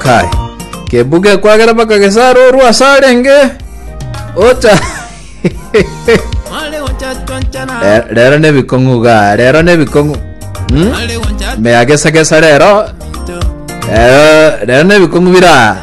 Kai. Kebuga ekwagera mpaka gesara orwa ase arenge. Ocha. Re- Rero ne bikong'u ga, rero ne bikong'u. Hmm? Meagesagesa rero. Rero rero ne bikong'u bira.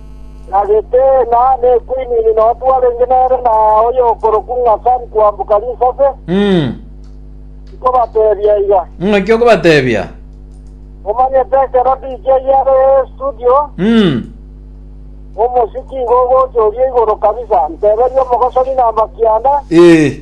na Geteena, na Ekuinini, na otu arenge nere, na oyokorokwa ng'a Sari kwamboka risase, Mm. nkobatebia iga. Ng'aki okobatebia? Omanyete ekero DJ are estudio, Mm. omosiki igo ogocha oria igoro kabisa, nteberie omogosori namba kianda, Eh.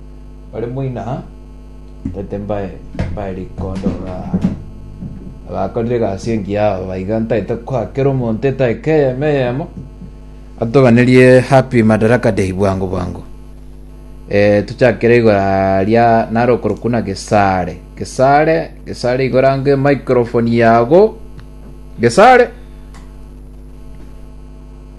Bare moino aa, ntagete mbae mbae rikondo aa. Abakorire egasi engiya aba baiga ntagete koa kera omonto edaika eyemo eyemo atoganerie happy madaraka day bwango bwango eh, tuchakire igora ria naro okorokwa na gesare gesare gesare igora nge microphone yago gesare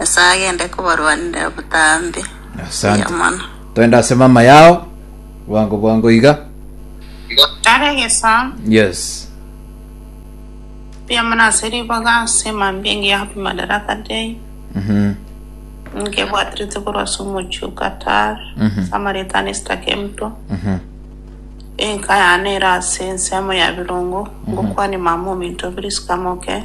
Nyasaye agende kobarwanera botambe buya Asante. mono. Twende ase mama yao. Bwango bwango iga. Are gesaa Yes. buya mono ase riboga ase mambia engiya happy madaraka day Mhm. nkebwaterete korwa ase omochie o Qatar Mhm. ase amaretano esitakemto Mhm. enka yane ere ase ensemo ya birongo ngokwane mama ominto Prisca Moke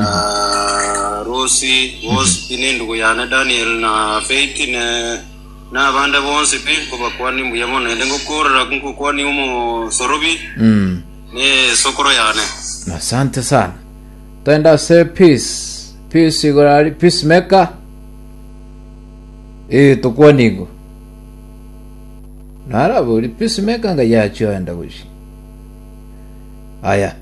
Ah, Rosi, bosi pi nindugu yane Daniel na Faith ne nabande bonsi pi nkobakwania mbuya mono ende ngokorera nkokwania omosorobi Mm. ne sokoro yane Asante sana. Twende ase peace. Peace igoro ari peace maker. Eh tukwanigo. Narabori peace maker nga yacho enda gushi. Aya.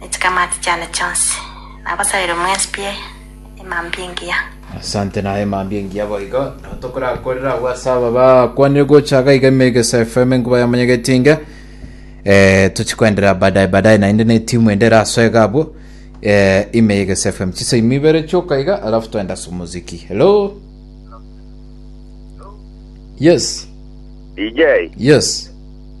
Ne chikamati chiane chionsi. Nabasaire mwensi pi emambia engiya. Asante naye emambia engiya boigo nabo tokorakorera agwo ase aba bakwanire gocha iga iga emegesa fm enkuba ya manyegetinge eh, tochikoenderera baadaye baadaye naende ne timu ende eraso iga abwo eh, imegesa fm chise imi ibere choka iga alafu toenda ase omuziki hello yes DJ yes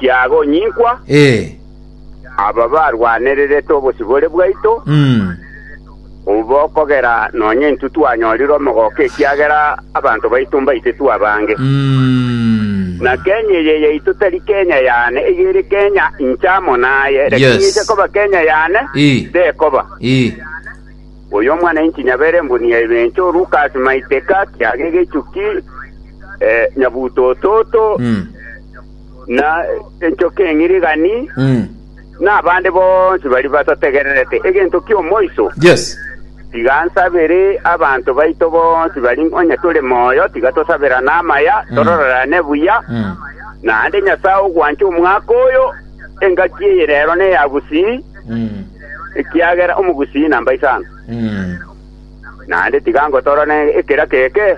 Kiagonyinkwa, Ee. aba barwanererete obosibore bwaito, Mm. obo okogera nonya intwe twanyorire omogoka ekiagera abanto baito mbaitetwe abange. Mm. Na Kenya eye yaito tari Kenya yane, eyere Kenya inche amo naye, lakini Yes. ise koba Kenya yane, Ii. tekoba. Ii. Oyo omwanyainchi nyabere mbuni ya ebencho, Lukas Maiteka, kiaga egechuki, nyabutototo, na enchoka eng'irigani, na abande bonsi baria batategererete egento ki'omoiso, tiga ansabere abanto baito bonsi baria onye tore moyo, tiga tosabera namaya, tororerane buya. Naende Nyasae ogwancha omwaka oyo, engaki eye rero neya bosii. ekiagera omogusii namba isano. Naende tiga ngotorane ekera keke,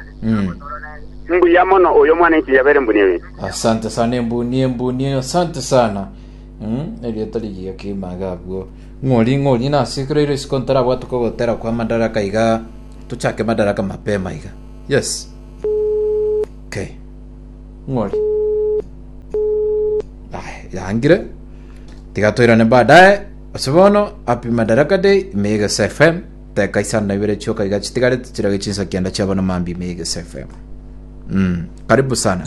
mbuya mono oyo omwana enchili yabeire mbuni eye. Asante sana embuni embuni asante sana Mm, erieta rigiga kimaga abwo ng'ori ng'ori nase ekero iro isiko ntarabwate kogotera kwa madaraka iga tochake madaraka mapema iga yes okay ng'ori Aya, yangire Tiga toirane baadaye. Ase bono, Happy Madaraka Day, ime Egesa FM. Teka isano na ibere chioka iga chitigarete chirage chinsa kianda chiabo na mambia ime Egesa FM. Mm, karibu sana.